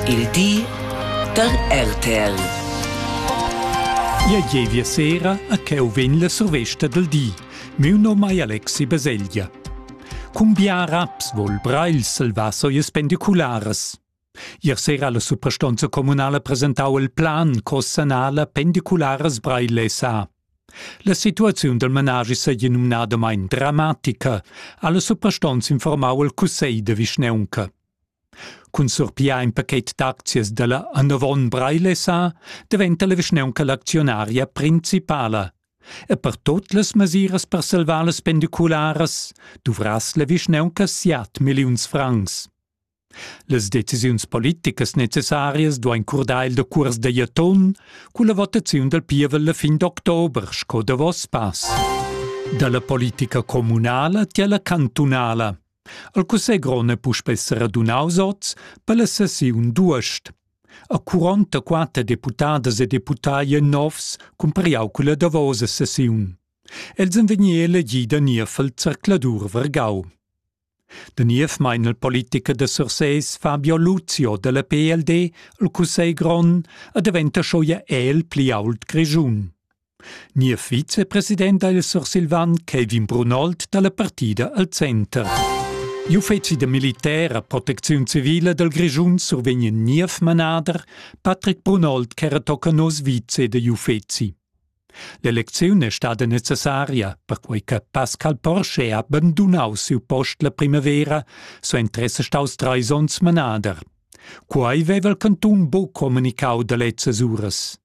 Il di da RTL. Ia gievia sera a cheu vegn la survesta del di. Miu nom ei Alexi Beseglia. Cum bia raps vol Breil salvar soies pendiculares. Ier sera la suprastonza comunala presentau il plan co sanala pendiculares Breil SA. La situaziun del managi seigi numnadamain dramatica, alla suprastonza informau il cussegl de vischneunca. Cun surpiar in pachet d'aczias dalla Annovon Breilessa daventa la vischnaunca l'actionaria principala. E per tot las mesiras per salvar las pendicularas duvrass la vischnaunca siat milliuns francs. Las decisiuns politicas necessarias duein curdar il decuors da Jaton culla votaziun dal pievel la fin d'october sco davos pass. Dalla politica communala tiella cantunala El cussegl grond è puspè seradunaus oz per la sessiun d'uost. A 44 deputadas e deputai novs cumpariau culla davosa sessiun. Els han vegni elegì da niev al zercladur Vergau. Da niev mein il politiker da Sursés Fabio Luzio dalla PLD al Cussegl grond a daventa scho ja el pli ault Grischun. Niev vicepresident dal Sursilvan Kevin Brunold da la partida al center. Gli uffizi da militär a protecziun civile dal Grischun survegnen niev manader Patrick Brunold ch'era tocca nos vice dagli uffizi. L'elecziun è stada necessaria, perquei che Pascal Porsche ha abandunau siu post la primavera, so interesse staus treis onns manader. Quai veva il cantun buc communicau da lezzas uras.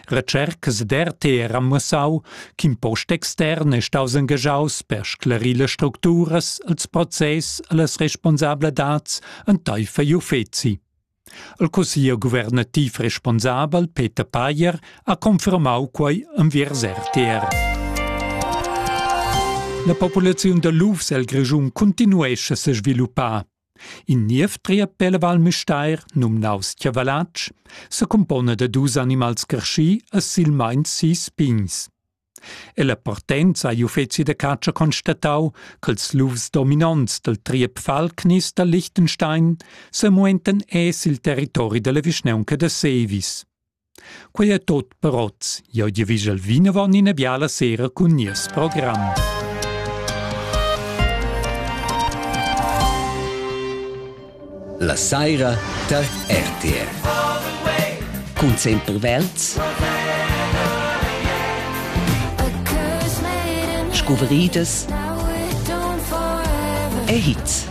Recercas d'RTR han muossau ch'in post extern è staus engagiaus per sclarir las structuras, ils process e las responsabladats enteifer igl uffeci. Il cussiglier guvernativ responsabel Peter Payer ha confermau quei enviers RTR. La populaziun da lufs el Grischun continuescha se sviluppar. In niev triepel Val Müstair, numnaus Chiavalatsch, secumpona da dus animals creschì e silmeins sis pigns. Ella partenza ha gli uffeci da catscha constatau ch'ils lufs dominonts dal triep Falknis da Liechtenstein semuentan es il territori dalla vischnaunca da Sevis. Quei è tot per oz. Eu di vigel vinavon ina biala sera cun nies program. La saira tar RTR. Cun sempre Welz. Scuvriedes e Hits.